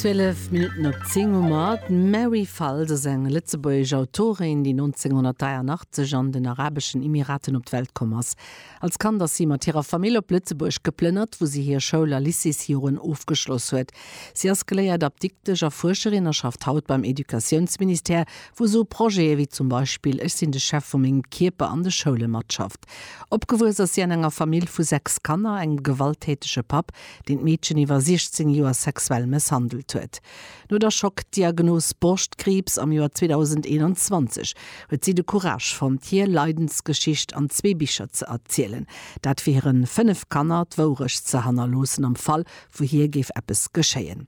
Zwielef Minutten op zéng hu mer. D'Mary Falls ass eng lëtzebuergesch Autorin, déi 1983 an den Arabeschen Emiraten op d'Welt komm ass. Als Kand ass si mat hirer Famill op Lëtzebuerg geplënnert, wou si hir Schoul a Lycéesjoren ofgeschloss huet. Si ass geléiert Apdiktesch a Fuerscherin a schafft haut beim Educatiounsministère, wou se u Projete wéi zum Beispill Ech sinn de Chef vu mengem Kierper an de Schoule matschafft. Opgewuess ass si an enger Famill vu sechs Kanner, engem gewalttätege Papp, deen d'Meedchen iwwer 16 Joer sexuell mësshandelt huet. No der Schockdiagnos Borschtkriibs am Joer 2021 huet si de Courage fonnt, hir Leidensgeschicht an zwee Bicher ze erzielen. Dat fir hiren 5 Kanner d'Wourecht ze hannerloossen am Fall, wou hir géif eppes geschéien.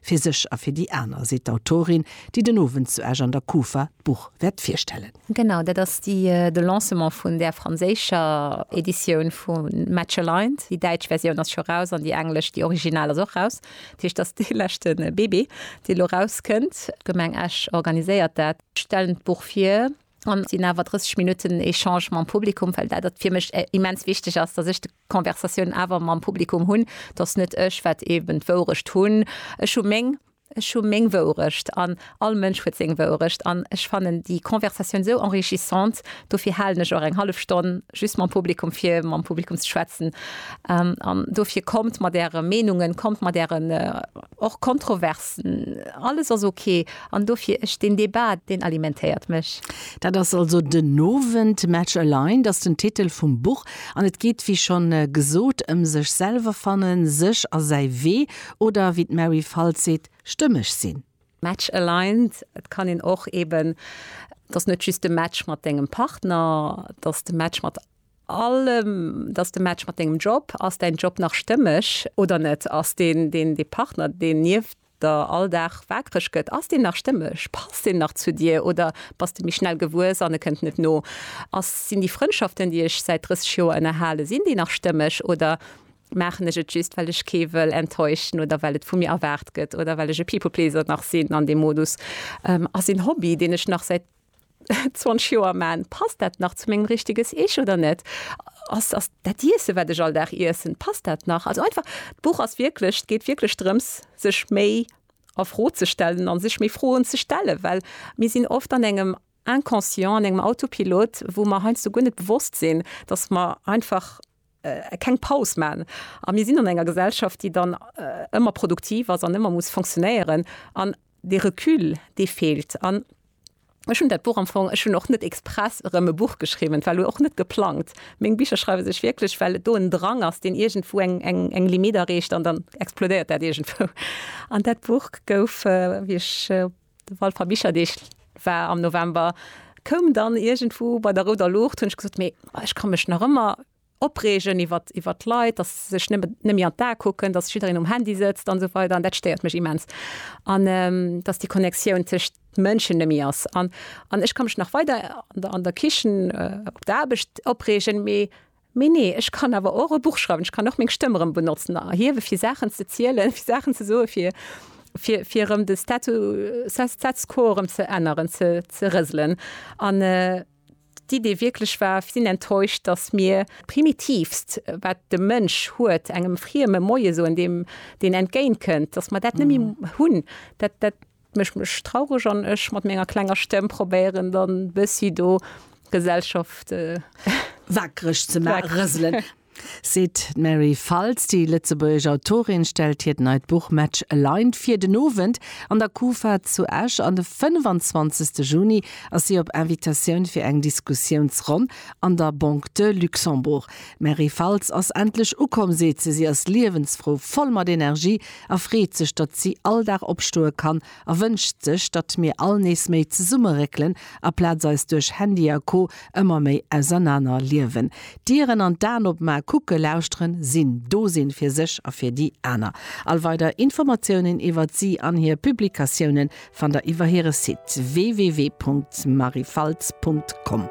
Fir sech a fir déi aner, seet d'Autorin, déi den Owend zu Esch an der Kufa d'Buch wäert virstellen. Genau, dat ass de Lancement vun där franséischer Editioun vu Matchalined. Déi däitsch Versioun ass scho raus an déi englesch, déi original, ass och raus. Dat heescht, dat ass dee leschte Bébé, dee lo rauskënnt. D'Gemeng Esch organiséiert dat, stellen d'Buch vir. An sinn awer 30 Minutten Echange mam Publikum, well dat fir mech immens wichteg ass, datt ech d'Conversatioun awer mam Publikum hunn, datt net ech wat eeben d'Wourecht hunn. Ech hu meng, ech hu meng Wourecht an all Mënsch huet seng Wourecht. An ech fannen déi Conversatioun esou enrichissant, dofir halen ech och eng hallef Stonn just mam Publikum, fir mam Publikum ze schwätzen. An dofir kommt mat Äre Meenungen, kommt mat Ären. Och Kontroversen, alles ass ok. An dofir, ech deen Debat, deen alimentéiert mech. Dat ass also den Owend. Match Aligned ass den Titel vum Buch an et geet, wéi schonn gesot, ëm sech selwer fannen, sech a säi Wee oder, wéi d'Mary Faltz seet, stëmmeg sinn. Match Aligned, et kann een och eeben, et ass net just de Match mat dengem Partner, et ass de Match mat. All dass de Match mat dengem Job, ass däin Job nach stëmmeg oder net? Ass deen deen dee Partner deen nieft der all Dag waakreg gëtt, ass deen nach stëmmeg? Passt deen nach zu dir oder bass de méi schnell gewuess an e kënnt net no? Ass sinn déi Frëndschaften déi ech säit 30 Joer ënnerhalen, sinn déi nach stëmmeg oder maachen ech et just well ech kee wëll enttäuschen oder well et vu mir erwaart gëtt oder well ech e People-pleaser nach sinn an deem Modus? Ass een Hobby deen ech nach säit 20 Joer man, passt dat nach zu mengem richteges Ich oder net? Ass ass dat Iessen, wat ech all Dag iessen, passt dat nach? Also einfach d'Buch ass wierklech, et geet wierklech drëms, sech méi a Fro ze stellen an sech méi Froen ze stellen, well mir sinn oft an engem Inconscient, an engem Autopilot, wou mer heiansdo guer net bewosst sinn, dass mer einfach, keng Paus man a mir sinn an enger Gesellschaft, déi dann ëmmer produktiv ass an ëmmer muss fonctionnéieren an dee Recul dee feelt. An ech hunn dat Buch am Fong, ech hunn och net express erëm e Buch geschriwwen, et war och net geplangt. Meng Bicher schreiwe sech wierklech, well et do en Drang ass, deen iergendwou eng Limitt erreecht an dann explodéiert dat iergendwou. An dat Buch gouf, wéi ech De Walfer Bicherdeeg war am November, koum dann iergendwou bei der rouder Luucht, hunn ech gesot, mee ech ka mech nach ëmmer opreegen iwwert iwwert d'Leit, dass se sech net net méi an d'A kucken, dass jiddereen um Handy sëtzt an esou weider an dat stéiert mech immens. An dass déi Connectioun tëscht Mënschen net méi ass. An an ech ka mech nach weider an der an der Kichen, op der Aarbecht opreegen, mee Mee nee, ech kann awer och e Buch schreiwen, ech kann och meng Stëmm erëm benotzen a erhiewe fir Saachen ze zielen, fir Saachen ze soen, fir, fir, fir erëm de Statu, Status quo erëm ze änneren, ze, ze rëselen. An d'Idee wierklech war, Ech sinn enttäuscht, datt mir d'Primitivst, wat de Mënsch huet, engem Frieme Moie soen, deem, deen entgéintkënnt, datt mir dat net méi hunn. Dat, dat, Mécht mech traureg an ech mat menger klenger Stemm probéieren dann bëssi do Gesellschaft wakereg ze ma rëselen. Seet d'Mary Faltz. Déi lëtzebuergesch Autorin stellt hiert neit Buch Match Aligned vir. Den Owend an der Kufa zu Esch an de 25. Juni ass si op Invitatioun fir eng Diskussiounsronn an der Banque de Luxembourg. D'Mary Faltz ass endlech ukomm, seet se. Si ass liewensfrou, voll mat Energie a freet sech, datt si all Dag opstoe kann a wënscht sech, datt mir all nees méi zesumme réckelen, aplaz eis duerch Handy a Co ëmmer méi ausernaner liewen. D'Dieren an d'Aen opmaachen, kucken, lauschteren, sinn, do sinn fir sech a fir déi aner. All weider Informatiounen iwwert si an hir Publikatiounen fannt der iwwer hire Site www.maryfaltz.com.